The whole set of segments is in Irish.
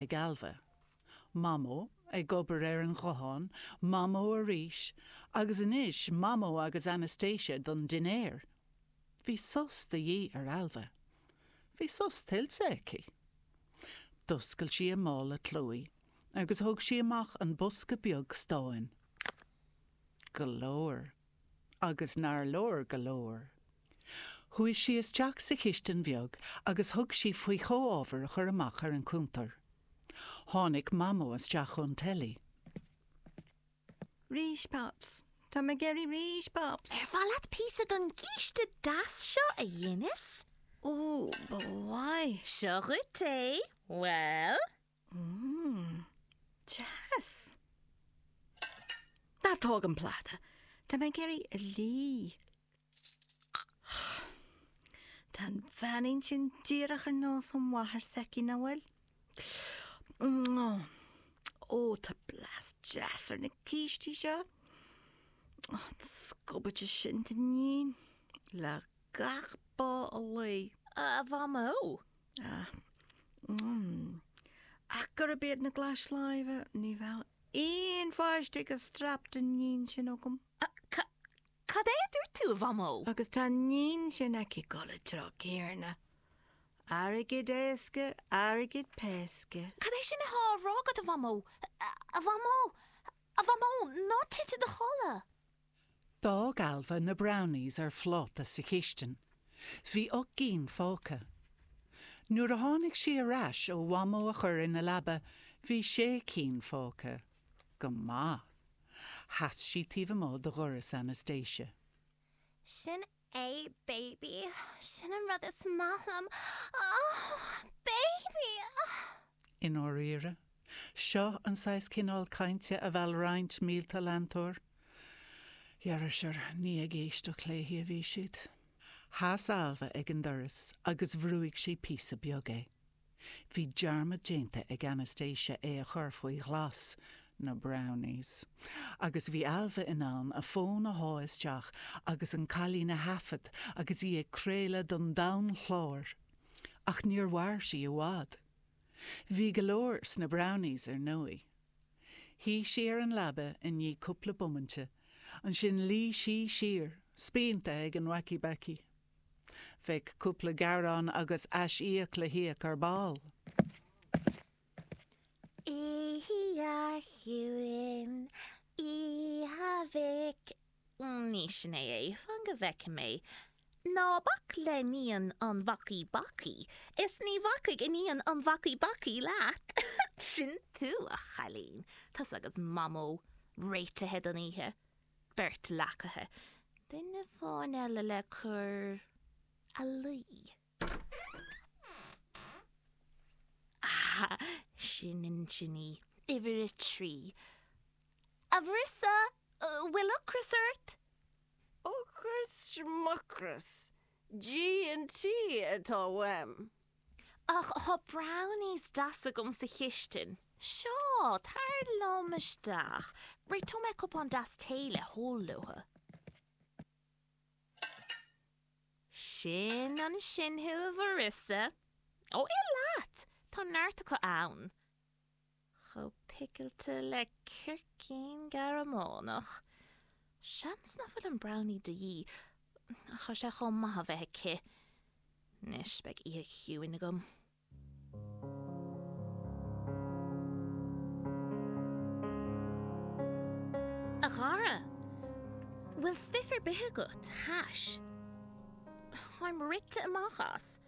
ag Ailbhe. Mamó, ag obair ar an ghuthán, Mamó arís, agus anois Mamó agus Anastasia don dinnéar. Bhí sos de dhíth ar Ailbhe. Bhí sos tuillte aici. D'oscail sí a mála agus thóg sí amach an bosca beag stáin. Go leor. Agus nár leor go leor. Chuaigh sí isteach sa chistin bheag agus thug sí faoi chomhábhair a chur amach ar an chuntar. Tháinig Mamó isteach ón teilí. 'Rís, Pops. Tá mé ag éirí arís, Pops. 'Ar mhaith leat píosa den chíste deas seo, a Dhennis? 'Ó, ba mhaith. 'Seo dhuit é. Bhuel? Mmm. Deas. Ná tóg an pláta. Tá mé ag iarraidh a lí. Tá an iníon sin díreach ar nós an mháthair s'aici, nach bhfuil? Ó, tá blas deas ar na cístí seo. An scubaid sin d'iníon le gach bó a lao. A Mhamó, Ach gurb iad na glais lámh, ní bheadh aon pháiste ag an striapach d'iníon sin agam. Cad é a dúirt tú, a Mhamó? Agus tá an iníon sin aici ag dul le trá céanna. Airgead éasca, airgead péasca. Cad é sin atá á rá agat, a Mhamó? A Mhamó! A Mhamó! Ná tit i do chodladh! D'fhág Ailbhe na brownies ar phláta sa chistin. Bhí ocht gcinn fágtha. Nuair a tháinig sí ar ais ó Mhamó a chur ina leaba, bhí sé cinn fágtha. Go maith. Sheas sí taobh amuigh de dhoras Anastasia. Sin A, baby, sin an rud is maith liom, oh, baby, oh. I ndáiríre? Seo an saghas cineál cainte a mheall roinnt mílte leantóir? Ar ndóigh, ní ag éisteacht léi a bhí siad. Sheas Ailbhe ag an doras agus bhrúigh sí píosa beag é. Bhí dearmad déanta ag Anastasia é a chur faoi ghlas, na brownies, agus bhí Ailbhe in ann a fón a shá isteach agus an cailín a thaifead agus í ag craoladh don domhan chláir. Ach níor mhair sí i bhfad. Bhí go leor sna brownies, ar ndóigh. Shuigh sí ar an leaba i ndiaidh cúpla bomainte, ansin luigh sí siar, spíonta ag an wacky-backy. Bheadh cúpla gearán agus ais-íoc le híoc ar ball. Oíche chiúin, oíche Mhic Dé sin é é, fan go bhfeicfidh mé. Ná bac le hiníon an bhacaí bacaí, is ní bhacfaidh iníon an bhacaí bacaí leat. Sin tú, a chailín. Tusa agus Mamó réitithe don oíche. beirt leacaithe, duine amháin eile le cur a luí. Ah, sin duine uimhir a trí. A Mharissa, bhfuil ocras ort? Ocras, schmucras, G&T atá uaim. Ach tá brownies deasa agam sa chistin. Seo, tar liom isteach. Réiteoidh mé cupán deas tae le hól leofa. Sin ansin thú, a Mharissa. Ó, ith leat! Tá neart acu ann. chomh picilte le circín Gearmánach. Seans nach bhfuil an brownie de dhíth, ach tá sé chomh maith a bheith aici. Anois, beidh oíche chiúin agam. A Dhara, bhfuil stuif ar bith agat? Hash? Táim rite amach as!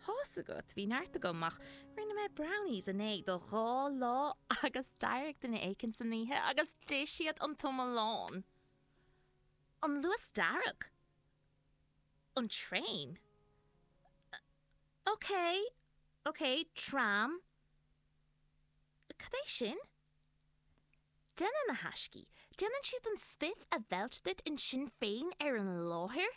Tá's agat, bhí neart agam ach rinne mé brownies inné do dhá lá agus d'éirigh duine éicint san oíche agus d'ith siad an t-iomlán. An Luas dearg? An traein? OK, OK, tram? Cad é sin? Déanann na haistí, déanann siad an stuif a mheilt duit ansin féin ar an láthair?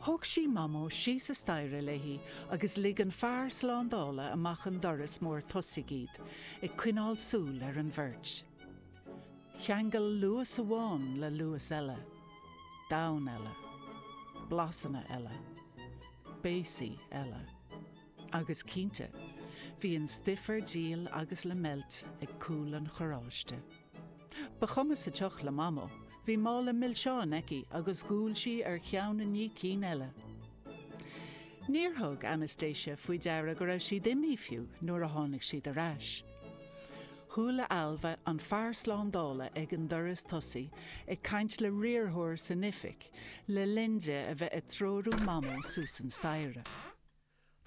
Thóg sí Mamó síos an staighre léi agus lig an fear slándála amach an doras mór tosaigh iad, ag coinneáil súil ar an bheirt. Cheangail Luas amháin le Luas eile. Domhan eile. Blasanna eile. Béasaí eile. Agus cinnte, bhí an stuif ar díol agus le meilt ag cúl an charráiste. Ba chuma sa tsioc le Mamó. Bhí mála milseán aici agus dhiúl sí ar cheann i ndiaidh cinn eile. Níor thug Anastasia faoi deara go raibh siad imithe fiú nuair a tháinig siad ar ais. Chuala Ailbhe an fear slándála ag an doras tosaigh ag caint le riarthóir san oifig le linn di a bheith ag treorú Mamó suas an staighre.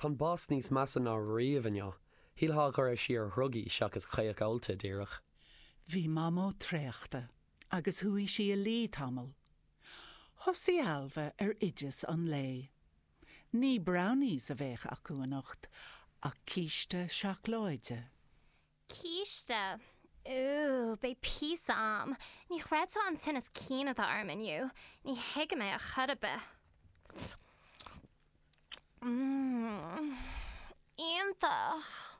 Tá an boss níos measa ná riamh inniu. Shílfeá go raibh sí ar dhrugaí seachas caoch ólta díreach. Bhí Mamó traochta agus chuaigh sí a luí tamall. Thosaigh Ailbhe ar oideas an lae. Ní brownies a bheadh acu anocht ach císte seacláide. Císte! Úúú, beidh píosa a'm. Ní chreidfeá an tinneas cinn atá orm inniu. Ní thuigim é a chor a' bith. Mmm. Iontach!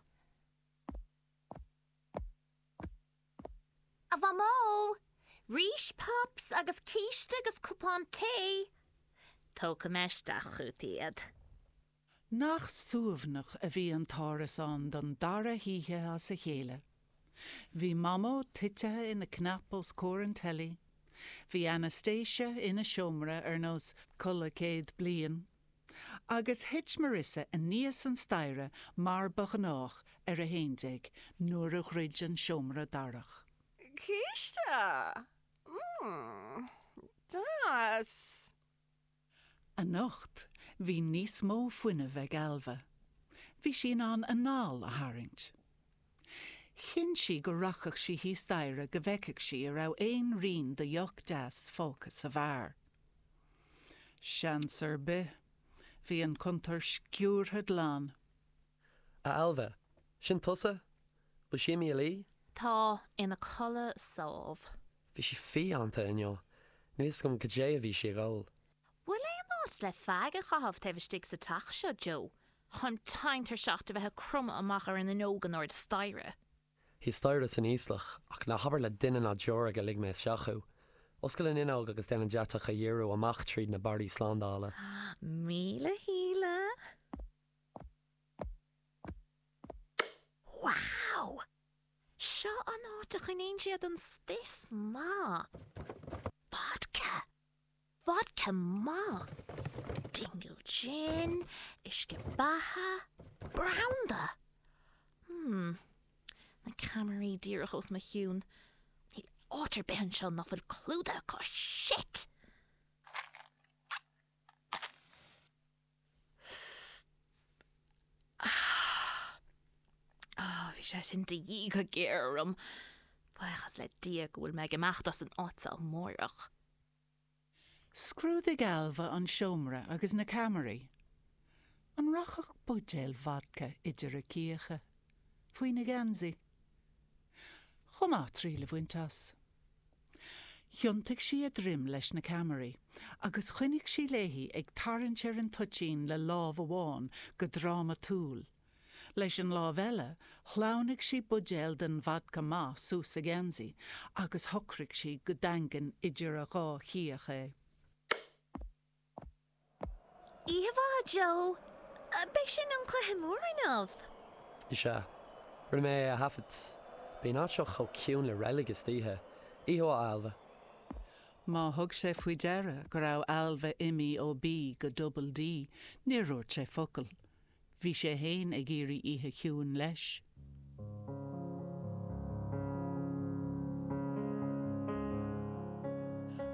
A Mhamó! Rís pops agus císte agus cupán tae! Tógfaidh mé isteach chugat iad. Nach suaimhneach a bhí an t-árasán don dara hoíche as a chéile. Bhí Mamó titithe ina cnap os comhair an teilí, bhí Anastasia ina seomra ar nós codladh céad bliain, agus thit Marissa aníos an staighre mar ba ghnách ar a haon déag nuair a dhruid an seomra darach. Císte! Mmm. Deas! Anocht, bhí níos mó fuinnimh ag Ailbhe. Bhí sí in ann anál a tharraingt. Chinn sí go rachadh sí thíos staighre go bhfeicfeadh sí an raibh aon rian de dheoch deas fágtha sa bheár. Seans ar bith. Bhí an cuntar sciúrtha glan. A Ailbhe, sin tusa? Bhfuil sí imithe a luí? Tá, ina codladh sámh. Bhí sí fiánta inniu. Níl fhios agam goidé a bhí sí ag ól. Bhfuil aon áit le feaig a chaitheamh taobh istigh sa teach seo, Joe, tá mé tinn tuirseach de bheith ag cromadh amach ar an fhuinneog in airde staighre? Thíos staighre san íoslach, ach ná habair le duine ná deoraí gur lig mé isteach thú. Oscail an fhuinneog agus déan an deatach a dhíriú amach tríd na barraí slándála. Míle shíle. Wow! Seo an áit a choinníonn siad an stuif maith. Vodka! Vodka maith! Dingle Gin, uisce beatha, branda! Hmm. Na ceamaraí díreach os mo chionn. Níl áit ar bith anseo nach bhfuil clúdaithe acu. Shit! Oh, bhí sé sin de dhíth go géar orm. Buíochas le Dia go bhfuil mé ag imeacht as an áit seo amárach. Scrúdaigh Ailbhe an seomra agus na ceamaraí. An rachadh buidéal vodca idir a cíocha? Faoina geansaí? Chomh maith, triail a bhaint as. Thiontaigh sí a droim leis na ceamaraí agus choinnigh sí léi ag tarraingt ar an toitín le lámh amháin go drámatúil. Leis an lámh eile, shleamhnaigh sí buidéal den vodka maith suas a geansaí agus shocraigh sí go daingean idir a dhá chíoch é. Oíche mhaith, Joe. B'in an cluiche mór inniu. Is ea. Rinne mé é a thaifead. Bíonn an áit seo chomh ciúin le reilig istoíche. Oíche mhaith, Ailbhe. Má thug sé faoi deara go raibh Ailbhe imithe ó B go Double D, níor dhúirt sé focal. Bhí sé fhéin ag iarraidh oíche chiúin leis.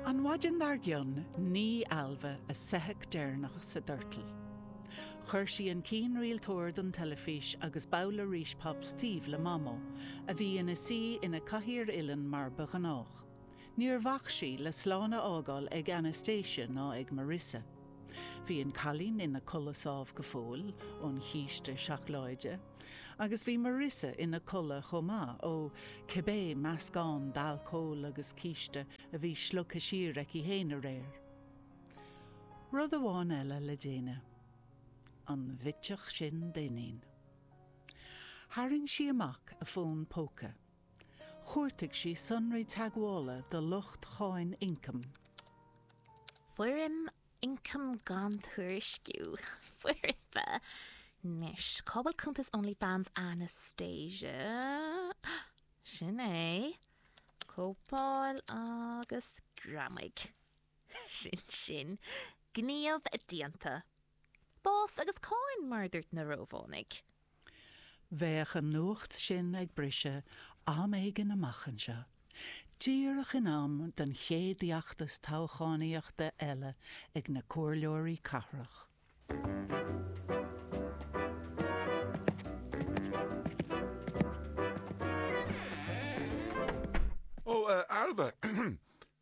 An mhaidin dar gcionn nigh Ailbhe a soitheach deireanach sa doirteal. Chuir sí an cianrialtóir don teilifís agus babhla Rice Pops taobh le Mamó, a bhí ina suí ina cathaoir uilleann mar ba ghnách. Níor bhac sí le slán a fhágáil ag Anastasia ná ag Marisa. Bhí an cailín ina codladh sámh go fóill ón chíste seacláide, agus bhí Marisa ina codladh chomh maith, ó cibé meascán d'alcól agus císte a bhí slogtha siar aici fhéin aréir. Rud amháin eile le déanamh. An bhitseach sin d'iníon. Tharraing sí amach a fón póca. Chuartaigh sí sonraí teagmhála do lucht Cháin Ioncaim. Foirm Ioncam Gan Tuairisciú, Foirfe, Anois, cá bhfuil cuntas OnlyFans Anastasia? Sin é. Cóipeáil agus greamaigh. Sin sin, gníomh déanta. Bás agus cáin, mar a dúirt na Rómhánaigh. Bheadh an nuacht sin ag briseadh am éigin amach anseo, díreach in am don chéad fheachtas toghchánaíochta eile ag na comhairleoirí cathrach. Ó, a Ailbhe!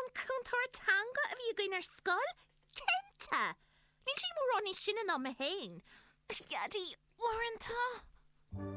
An cúntóir teanga a bhí againn ar scoil? Cinnte! Níl sí mórán níos sine ná mé féin. A Dhaidí, i ndáiríre!